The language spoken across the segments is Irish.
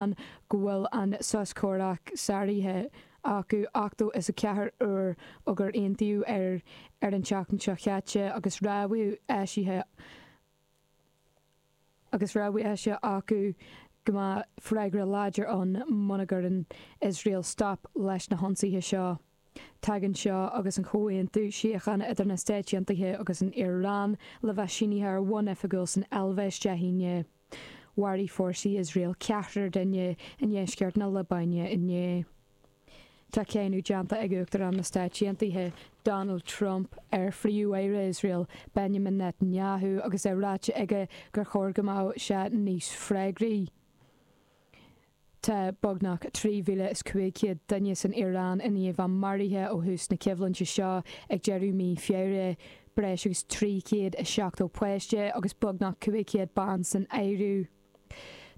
go bhfuil an sos comhraic sáraithe acu 84 uair ó gur aontaíodh air ar an tseachtain seo chaite agus rabhadh eisithe acu go mbeadh freagra láidir ann muna gcuireann Iosrael stop leis na hionsaithe seo. Tagann seo agus an comhaontú síochána idir na Stáit Aontaithe agus an Iaráin le bheith sínithe ar bhonn oifigiúil san Eilvéis Dé hAoine. Mharaigh fórsaí Iosrael ceathrar duine i ndeisceart na Liobáine inné. Tá cáineadh déanta ag Uachtarán na Stáit Aontaithe Donald Trump ar Phríomh-Aire Iosrael Benjamin Netanyahu agus é ráite aige gur chóir go mbeadh sé níos freagraí Tá beagnach 3,500 duine san Iaráin i ndiaidh a maraithe ó thús na coimhlinte seo ag deireadh mí Feabhra, breis agus 370 páiste agus beagnach 500 bean san áireamh.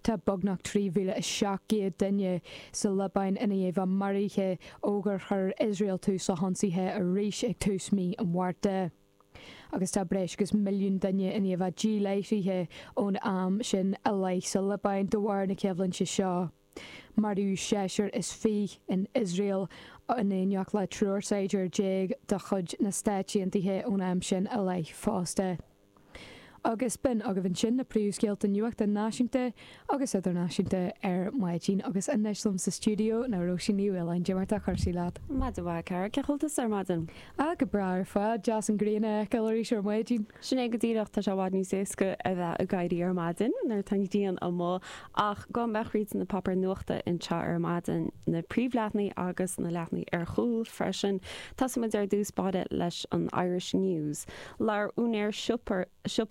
Tá beagnach 3,700 duine sa Liobáin i ndiaidh a maraithe ó gur chuir Iosrael tús le hionsaithe arís ag tús mí an Mhárta. agus tá breis agus milliún duine i ndiaidh a ndíláithrithe ón am sin i leith sa Liobáin de bharr na coimhlinte seo. Maraíodh seisear is fíche in Iosrael in éineacht le triúr saighdiúir déag de chuid na Stáit Aontaithe ón am sin i leith fosta. Agus b'in agaibh ansin na príomhscéalta nuachta náisiúnta agus idirnáisiúnta ar maidin. Agus anois liom sa stiúideo ná Róisín Ní Mhaoláin. Dé mar atá cúrsaí leat. Maidin mhaith, a chara. Cén chaoi a bhfuil tusa ar maidin? Á, go breá ar fad. Deas an ghrian a fheiceáil arís ar maidin. Sin é go díreach. Tá sé i bhfad níos éasca a bheith ag éirí ar maidin nuair atá an ghrian amuigh. Ach gabhfaidh muid thríd na páipéir nuachta anseo ar maidin. Na príomhleathnaigh agus na leathnaigh ar chúl freisin. Tosóimid ar dtús báire leis an Irish News. Labhair úinéir siopa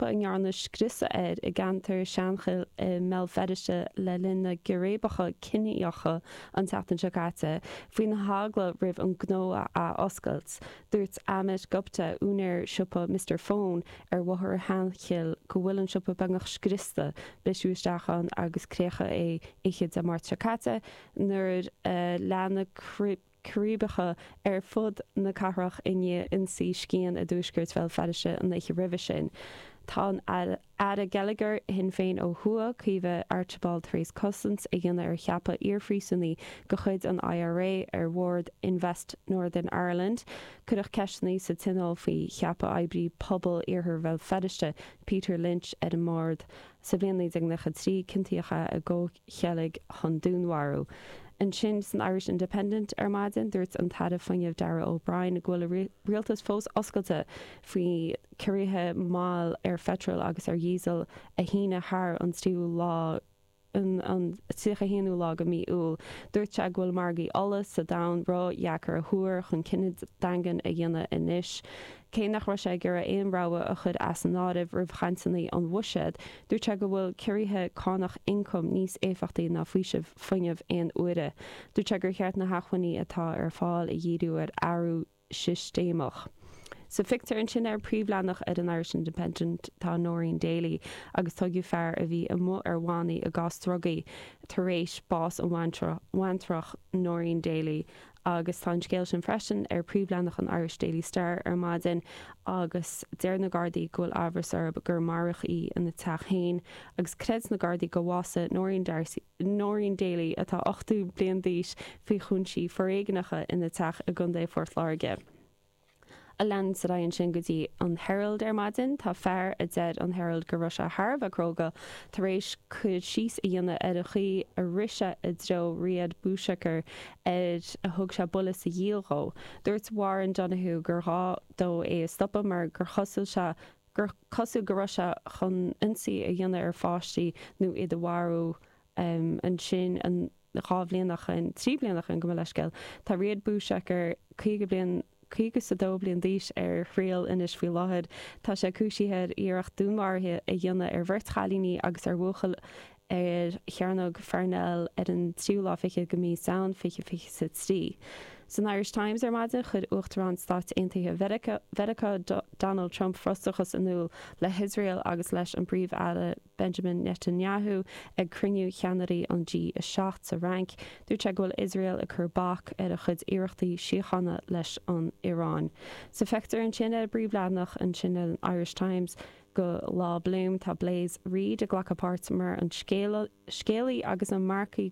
a ndearnadh scriosadh air i gceantar na Seanchille i mBéal Feirste le linn na gcíréibeacha ciníocha an tseachtain seo caite faoina eagla roimh an gnó a athoscailt. Dúirt Amit Gupta, úinéir siopa Mister Phone ar Bhóthar Sheanchill go bhfuil an siopa beagnach scriosta, briseadh isteach ann agus creachadh é oíche Dé Máirt seo caite nuair a lean na círéibeacha ar fud na cathrach i ndiaidh ionsaí scian i dtuaisceart Bhéal Feirste an oíche roimhe sin. Tá an tAire Geilleagair Shinn Féin ó thuaidh, Caoimhe Archibald tar éis cosaint a dhéanamh ar cheapadh iarphríosúnaí de chuid an IRA ar bhord Invest Northern Ireland. Cuireadh ceisteanna sa Tionól faoi cheapadh oibrí pobail iarthar Bhéal Feirste, Peter Lynch ar an mbord. Sa bhliain 1993 ciontaíodh é i gcomhcheilg chun dúnmharú. Ansin san Irish Independent ar maidin dúirt an tAire Fuinnimh Darragh O'Brien go bhfuil a rialtas fós oscailte faoi chiorruithe máil ar pheitreal agus ar dhíosal a shíneadh thar an 31ú lá de mhí Iúil. Dúirt sé go bhfuil margaí ola sa domhan ródheacair a thuar chun cinneadh daingean a dhéanamh anois. Cé nach raibh sé ag iarraidh aon rogha a chur as an áireamh roimh chainteanna an Bhuiséid, dúirt sé go bhfuil ciorruithe cánach ioncaim níos éifeachtaí ná faoiseamh fuinnimh aon uaire. Dúirt sé gur cheart na hacmhainní atá ar fáil a dhíriú ar athrú sistéamach. Sa phictiúr ansin ar an bpríomhleathanach ar an Irish Independent tá Noreen Daly agus tóigeadh fear a bhí amuigh ar bhannaí i gcás drugaí tar éis bás an bhaintreach Noreen Daly Agus tá an scéal sin freisin ar phríomhleathanach an Irish Daily Star ar maidin agus deir na Gardaí go bhfuil amhras orthu gur maraíodh í ina teach féin agus creideann na Gardaí gur bhásaigh Noreen D'Arcy, Noreen Daly atá 80 bliain d'aois, faoi chúinsí foréigneacha ina teach i gContae Phort Láirge. Ag leanacht ar aghaidh ansin go dtí an Herald ar maidin. Tá fear a deir an Herald go raibh sé thar a bheith cróga tar éis cur síos a dhéanamh ar an chaoi a rith sé i dtreo Riad Bouchaker gur thug sé buille sa ghiall dhó. Dúirt Warren Donohoe gur ghá dó é a stopadh mar gur chosúil sé gur cosúil go raibh sé chun ionsaí a dhéanamh ar pháistí nó iad a mharú. Ansin an. dhá bhliain ó shoin, trí bliana ó shoin gabh mo leithscéal. Tá Riad Bouchaker, caoga bliain, caoga is a dó bliain d'aois, ar thriail anois faoi láthair. Tá sé cúisithe ar iarracht dúnmharaithe a dhéanamh ar bheirt chailíní agus ar bhuachaill ar Chearnóg Pharnell ar an tríú lá fichead de mhí Samhain fiche fiche 's a trí. San Irish Times ar maidin chuir Uachtarán Stáit Aontaithe Mheiriceá Donald Trump frustrachas in iúl le hIosrael agus leis an bPríomh-Aire Benjamin Netanyahu ag cruinniú cheannairí an G7 sa Fhrainc, dúirt sé go bhfuil Iosrael ag cur bac ar a chuid iarrachtaí síochána leis an Iaráin. Sa phictiúr ansin ar an bpríomhleathanach ansin ar an Irish Times do Lá Bloom. Tá Blaise Reid ag glacadh páirt mar an scéalaí agus an marcaí.